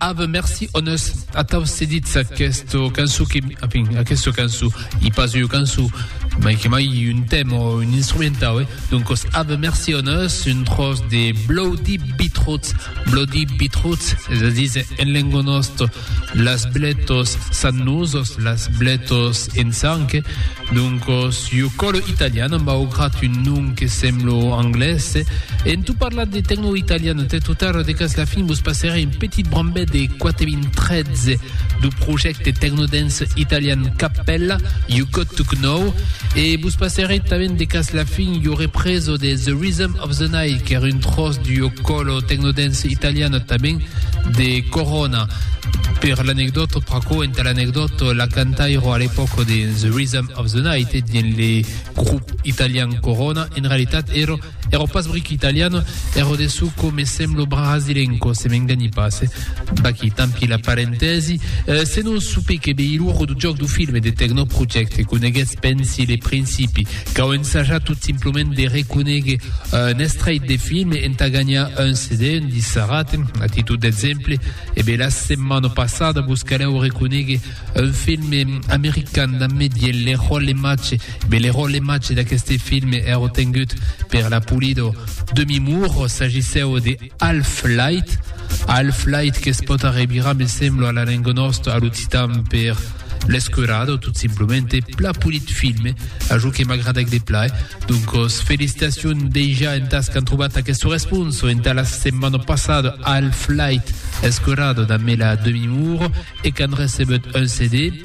Ave merci honest atau cedits aquesta canço que enfin, aquesta canço i pas eu canço mai que mai un tem o un instrumentau eh? donc os ave merci honest un tros de bloody beetroots bloody beetroots és a dir en lengo nostre las bletos sannusos las bletos en sang eh? Doncos, jo colo italian amb augrat un nom que semblo anglés. En tot parlar de tecno italian entè tot arreu de cas la fin vos passerè un petit brambet de 4013 du projècte tecnodance italian Cappella, You Got To Knou, e vos passerè tanben de cas la fin jo represo de The Rhythm Of The Night qu'èra un tròç du jo colo tecnodance italian tanben de Corona. Per l'anecdòta, pr'aquò entà l'anecdòta, la cantaira a l'epòca de The Rhythm of the Night dins le grop italian Corona, en realitat èra èra pas bric italiana, èra de çò quò me sembla brasilenca, se m'enganhi pas, eh? Vaquí, tant pis, la parentèsi. Senon, supé que Beiluro du jòc du film e de Techno Project e coneguètz, pensi, le principi. Cau ensajar tot simplement de reconéguer un estrèit de film entà ganhar un CD, un dissarat, a títol d'exemple. E be, la setmana passada vos calèu reconéguer un film american damb medier le ròle matge. E be, le ròle matge d'aqueste film èra tengut per la Pulido. Demi-mour, s'agissèu de. Half-light, half-light que's pòt arrevirar, me semblo, a la lenga nòsta, a l'occitan, per l'esquerada o tot simplemente pla polit filme, a jo que m'agradèc de plai. Doncos, felicitacion dejà entàs qu'an trobat aquesta responsa entà la setmana passada, half-light, esquerada, damb la demi-mur, e qu'an recebut un CD.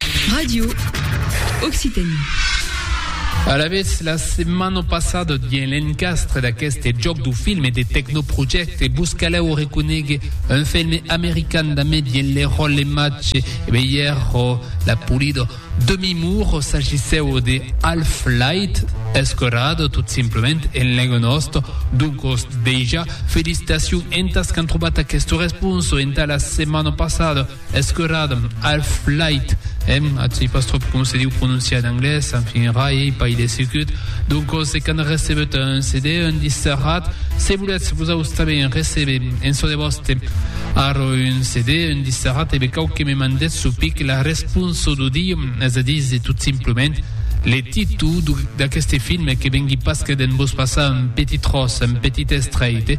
Radio Occitanie. Alavetz, la setmana passada, dien l'encastre d'aqueste jòc du film e de tecnoprojècte, vos calèu o reconegue un film american damé dien le ròl e match e veier o la polida demi mur o s'agissèu de Half Light, escorado tot simplement en lenga nòsta. Doncos, deja, felicitacion entas qu'an trobat aquesta responsa entà la setmana passada. Escurad'm, half-light, èm a sei pas tròp com se diu prononciar en anglés, enfin rai ei pas ilesicut, doncos se qu'an recebut un CD, un disserrat, se volètz vosaus tanben receber en çò de vòste arro un CD, un disserrat, e be cau que me mandètz çò pic la responso d'o dir, es a díser tot simplement le titu d'aqueste film que vengui pas que d'en vos passar un petit tròç, un petit estrèit.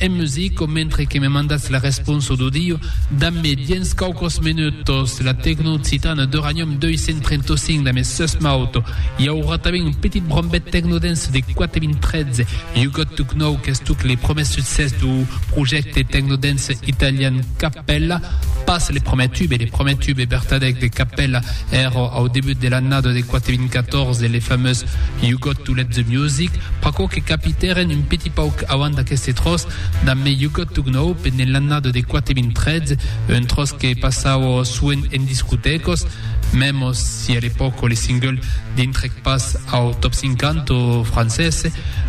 En musico, mentre que me mandatz la responsa d'audio, damb-me dens quauquos menutos la Tecno Occitana d'Uranium 235 damb es seues mauto. I aurà tanben un petit brombet tecnodance de 4013, You Got To Know qu'es tot le promès succès dau projècte tecnodance italian Cappella, pas le promè tube, le promè tube vertadèc de Cappella èra au debut de l'annada de 4014, le famós You Got To Let The Music, pr'aquò que capitèren un petit pauc avant d'aqueste tròç damb Me You Got To Gnou pendent l'annada de 4013, un tròç que passava soent en discotècas, mèmos si a l'epòca le single dintrèc pas au Top 50 francés.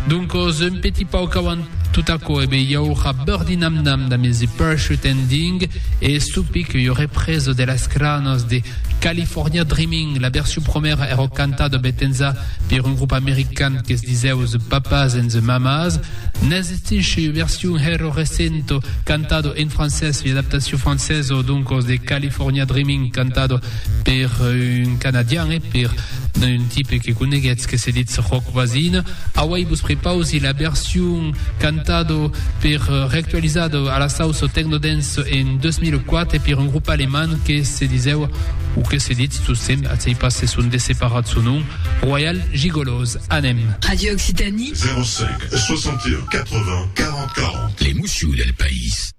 Doncos, un petit pauc avant tot aquò, e be i aurà Birdie Nam Nam damb The Parachute Ending e Soupic, ua represa de las cranas de California Dreaming, la version promèra èra cantada betenza per un grup american que se disèu The Papas and the Mamas. N'existisci ua version hèra recenta cantada en francés, ua adaptacion francesa doncas de California Dreaming cantada per un canadian e per D'un un tipe que coneguètz que se ditz Roc Voisin. Auèi vos prepausi la version cantado per reactualizado a la sauce technodance en 2004 per un grup alemand que se disèu, o que se ditz tot semp, atzèi pas se son desseparat son nom, Royal Gigolos. Anem! Radio Occitanie. 05 61 80 40 40. L'emoció del país.